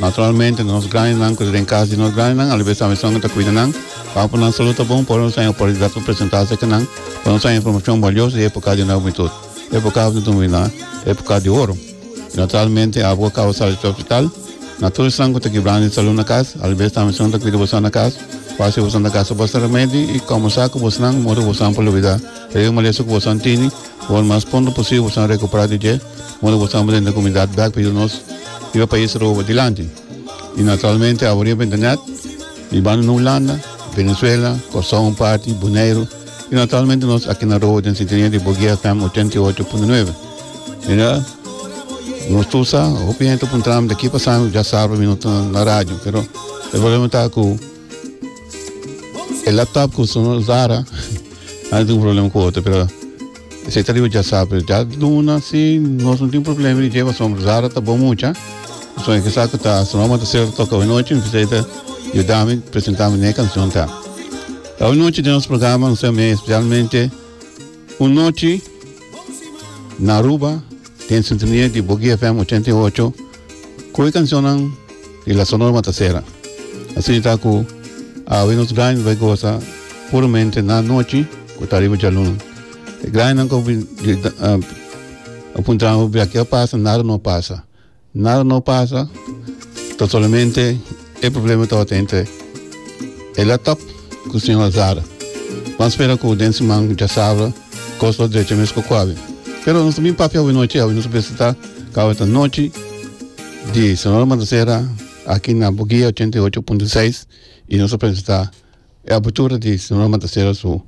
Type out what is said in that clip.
Naturalmente nos grandenan cu ta den cas di nos grandenan alabes tambe esnan cu ta cuida nan. Papo nan salud ta bon por nos haya oportunidad pa presenta se cu nan, pa nos haya informacion balioso di epoca di nos humintud. Epoca af di nos humintud na epoca di oro. Y naturalmente af cu a caba sali ta hospital na tur esnan cu ta gibrando e salud na cas alabes tambe esnan cu ta cuida boso na cas pa haci boso na gasta boso remedi y como sa cu boso nan modo cu boso nan por lubida e yu malesa cu boso nan tini, por mas pronto posible boso nan recupera di dje. moda bo tambe den e komunidat bèk pa yuda nos riba e pais Aruba dilanti. I naturalmente awor riba internet mi banda na Hulanda, Venezuela, Kòrsou un parti, Boneiru i naturalmente nos aki na Aruba den sintonia di Boguia FM ochenta i ocho punto nueve. Mira, nos tur sa, hopi hende ta puntranan daki pa Sandro, dja sabra mi no ta na radio pero e problema ta ku E laptop ku su usara a tin un problema ku otro pero esei ta riba dja sa pero dja luna si nos no tin problema di dje pasobra usara ta bon mucha pasobra e kisa ku ta su mama ta ser toka awe nochi mi bisita yuda mi presenta mi ne kancion ta awe nochi den nos programa nos ta me specialmente un nochi Na Aruba den sintonia di Boogie FM ochenta i ocho ku e kanshonnan di La Sonora Matasera. Asina ta ku awe nos graña ta bai gosa puramente na anochi ku ta riba djaluna. E grañanan ku a puntra hopi aki a pasa, nada no a pasa. Nada no pasa ta solamente e problema ta ota entre e laptop cu señor Alzada. Ban spera cu den siman cu djasabra cos lo drecha mesco cu awe. Pero nos ta bin papia awe nochi, awe nos a presenta cu awe ta nochi di Sonora Matancera aki na Buguia ochenta i ocho punto seis y nos a presenta e apertura di Sonora Matancera su.